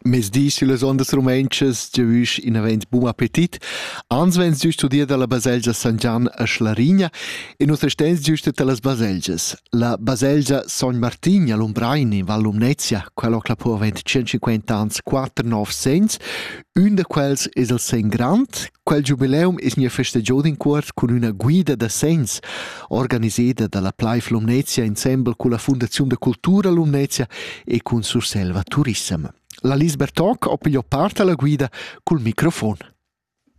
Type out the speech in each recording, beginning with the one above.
Mezdi sillas ondas rumentschas giavüsch inavant bun appetit. Ans vegns giüst udir dalla baselgia San Gian a Schlarigna e nus estens giüst da las baselgias. La baselgia Son Martin a Lumbraini, Val Lumnezia, quella ho clapò avent 150 ans 4 nov segns, Ün da quels es il segn grand. Quel giubileum es gnü festagiò d'incuort cun üna guida da segns, organiseda da la Pleif Lumnezia insembel culla Fundaziun da cultura Lumnezia e cun Surselva Turissem. La Lisbeth Toc ho pigliò part alla guida cul microfon.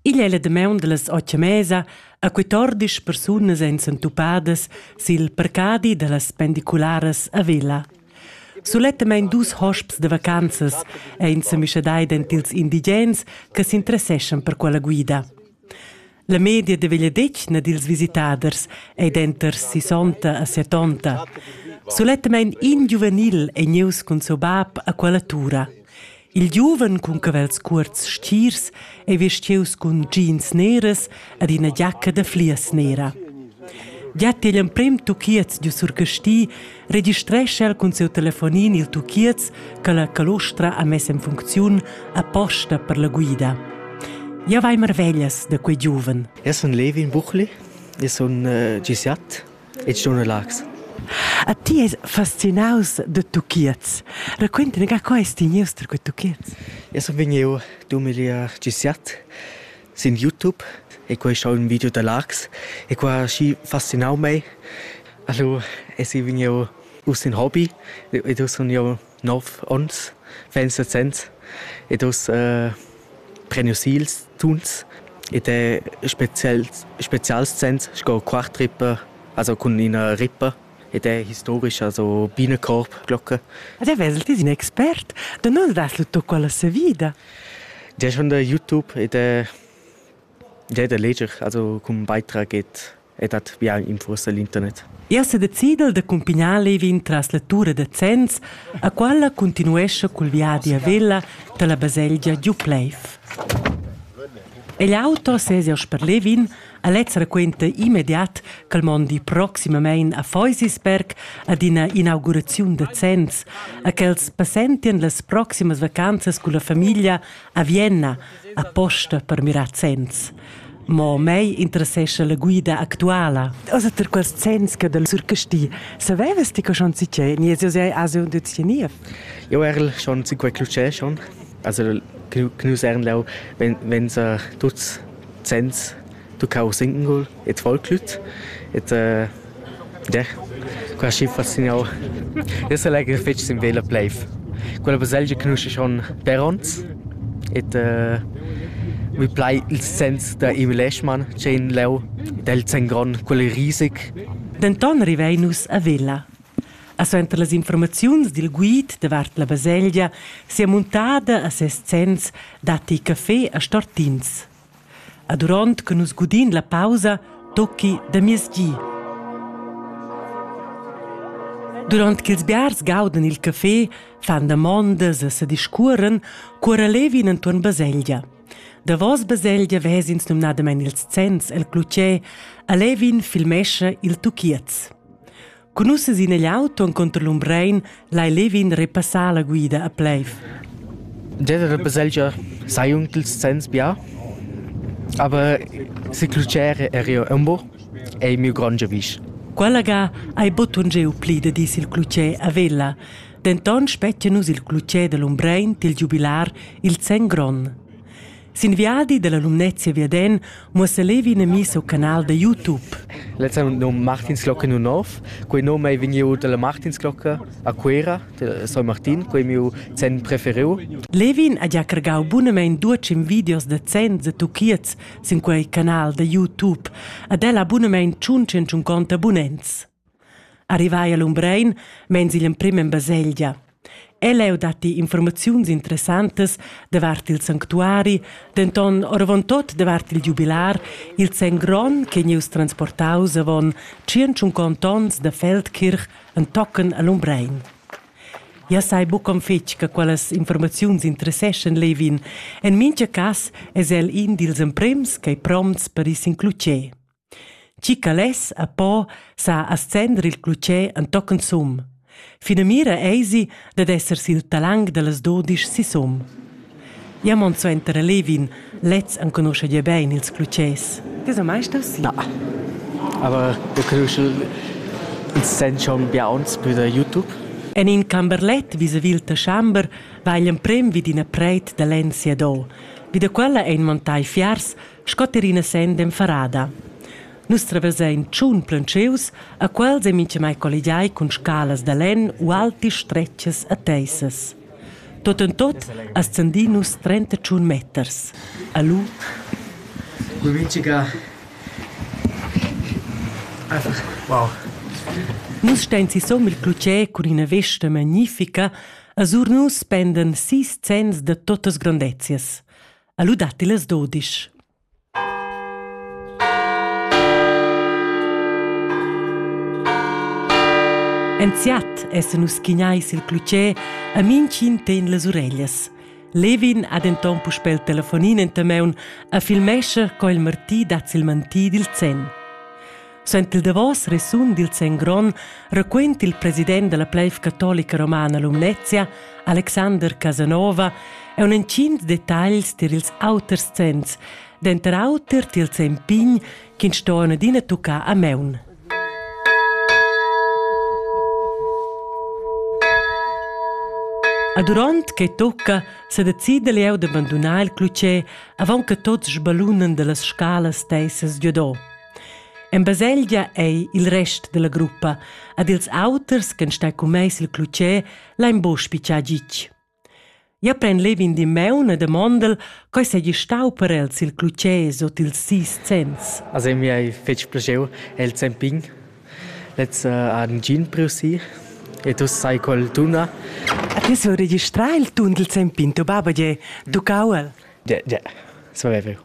Igl è la damaun dallas otg e mesa a 14 persunas èn s'entupadas sil parcadi dallas pendicularas a Vella. Sulettamain dus hosps da vacanzas ein semischadai dentils indigens che s'interesseschan per quella guida. La media de vegliadetgna dils visitaders ei denter sisonta e setonta. Sulettamain in giuvenil ei gnieus cun seu bab a quella tura. Il giuven cun cavels cuorts stirs ei vestius cun jeans neras ed ina giacca da flias nera. Giat igl emprem tuchiez giu sur Casti registrescha el cun siu telefonin il tuchiez che la calostra ha mess en funcziun aposta per la guida. Ja vai marveglias da quei giuven. Eu sun Levin Buchli, eu sun uh, gisiat e ti ston relax. A ti es fascinaus da tuchiez. Raquinta ga, co es ti gnius tar quei tuchiez? Eu sun vegnieu dumigliar giü siat sin YouTube e quai schau ün video da Laax e qua ha schi fascinau mei. Alura es i vegnieu uss ün hobby ed eu sun jau nov ons vegn sesents ed uss eh, prenius ils tuns ed è spezial, spezials sens sco quartrippe, also cun ina rippe ed è historic, also Bienenkorbglocke. Ad avesel ti in expert? Da nus das lu tocca la savida? Di schon da YouTube ed è Jeu da leger also cun beitrag ed e dat bia infursa l'internet. Ia sedecidel da cumpignar levin tras la tura da Zens, a qualla continuescha cul viadi a Vella dalla baselgia Giupleif. El auto sesia per Levin, Alex raquenta immediat ch'el mondi proximamein a Feusisberg ad ina inauguraziun da Zens, a quels passentien las proximas vacanzas culla famiglia A Vienna aposta per mirar zenns. Mo mei interessescha la guida actuala. Also per quels zenns che del surcasti savevas ti che schon si che ni es sei ase und jetzt nie? Jo erl schon si quei clucè schon. Also knusern lau wenn wenn sa tuts zenns tuccau singul et Volklüt et äh, der qua schi faszinau. Io selegr fetg sin vela pleiv. Quella baselgia conosce schon per ons et äh, mi plai il sens da Emil Eschmann c'è in leu del Zengron quel risig. Denton rivein nus a Vella. A suenter las informaziuns dil guid davart la baselgia sia muntada a ses sens datti caffé a Stortins. E duront che nus gudin la pausa, tocchi da mies gi. Durant ch'ils biars gaudan il café, fan damondas e se discuoren, cuora levin entuorn baselgia. Davos baselgia vesins numnadamein ils zenns el clutger e levin filmescha il tuchiez. Cun ussa sin igl auto encunter l'Umbrein lai Levin repassar la guida a Pleiv. Deve repassar sei un dils zenns bia, aber se clucere er io umbo ei miu grand giavisch. Quella ga hai botun giu pli da dis il clucè a Vella. Denton spettia nus il clucè dell'Umbrein til giubilar il zenn gron. Sin viadi dalla Lumnezia viaden muossa Levi ina missa o canal da YouTube. Letztes num Martinsglocke nu nov. Quei num ei vegniu dalla Martinsglocke a Cuera, de San Martin, quei miu zen preferiu. Levin ha già cargau bunamein duecim videos da zens e tuchiets sin quei canal da YouTube. Ad ella bunamein tschun tschun conta abonnents. Arrivai a Lumbrein meins igl emprim en baselgia. Ell'eu datti informaziuns interessantas davart il sanctuari, denton oravontut davart il giubilar, il zen gron che gnieus transportaus avon 150 onns da Feldkirch entochen a Lumbrein. Ja sai buc'on fetg che quellas informaziuns interesseschan Levin. En mincha cass es el in dils emprims ch'ei prompts per is includer. Tgi che less e po sa ascender il clutger entochen sum. Finamira eisi dad esser sin talang dallas dudisch sisum. Ja mon suenter a Levin, lez enconuscha gia bein ils clutgers. Ti so mai stos? Na. Aber wir können schon sehen schon bei uns bei der YouTube. En in camberlet vis-a-vis il Taschamber va igl emprem vid ina preit da lenn siadò. Vid da quella ein montai fiars sco terrina senden farada. Nus traversain tschun plancheus, a quels è mintgamai colligiai cun scalas da lenn u alti stretgas e teissas. Tot en tot ascendì nus 31 meters. Alu. Mintga Wow. Nus stein si som il clutgè cun ina vesta magnifica, a sur nus spenden sis zenns da totas grandezias. ha lu datti las dudisch. Enziat essan nus chignai sil clutger a minchin ten las ureglias. Levin ha denton puspel il telefonin enta meun a filmescha co il martì dat sil mantì dil zen. Sent il davos resun dil Sen Gron raquent il president della pleiv catolica romana Lumnezia, Alexander Casanova, e un entschient detagls tier ils auters zenns, denter auter tier il Sen Pign, ch'in stoen adina tucca a meun. A durant che tocca se decida leu de bandunar il clucè avant che tots sbalunen dallas scalas teissas giodò. En baselgia ei il rest dalla gruppa ed ils auters ch'en stai cun mei sil clutger lein buca spitgar gitg. Ja pren levin di meun e demondel coi seigi stau per el sil clutger sot ils sis cents. Also mi hai fetg plaschiu el zempin. Letz uh, han gin priu si e tu sai col tuna. A ti sul registrar il tun del zempin, tu baba je, tuccau el. Ja, ja, so è vero.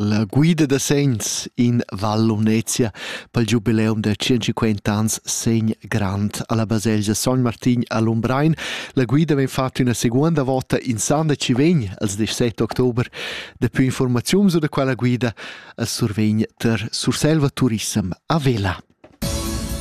La guida da segns in Val Lumnezia pel giubileum da tschincinquant ans segn grand alla baselgia Sogn Martin a Lumbrein. La guida vegn fatta üna seguonda vota in san da chi vegn als 17 october. Daplü informaziuns da quella guida as survegn ter Surselva Turissem a Vela.